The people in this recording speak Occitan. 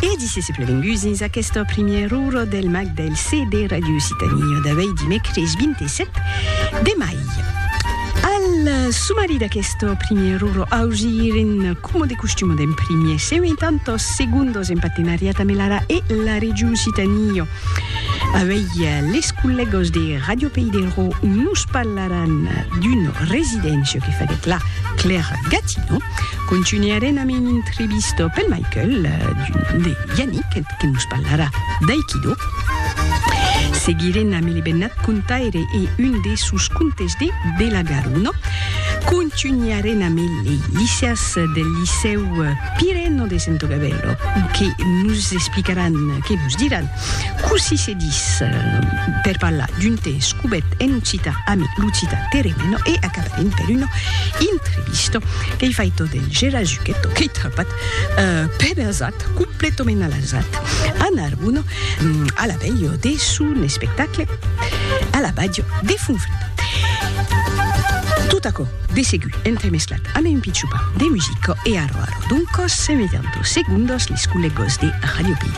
E disies e plevengús dins aquesta primièr ora del mag del CD Radio Occitanie d'avei dimècres 27 de mai. Al sumari d'aquesta primièr ora ausiren coma de costuma d'en primier 50 segundos en partenariat amb l'ARA e la Regió Occitanie. Avei les collègos de Radio Pays de Rò nos parlaràn d'una residéncia que faguèt la Claire Gatineau, Contunharem amb un intrevista pel Michael d'un nom de Yannick que nos parlarà d'aikido. Seguirem amb le bennat contaire e un de sos contes de De la Garona. Contunharem amb le Licias del Licèu Pireno de Sento Gavèlo que nos explicaràn, que nos diràn, Cossí se dis per parlar d'un te escubèt en occitan ami l'occitan teremeno e acabarem per una entrevista qu'ei faita del Gera Zucchetto qu'ei trapat per azat, completament a l'azat, a Narbona a la velha de son espectacle a la Bàdia de Fonfreda. Tot aquò de segur entremesclat amé un pichupam de musica e arro arro d'un còs se metan dos segondas les collègas de Radio Pic.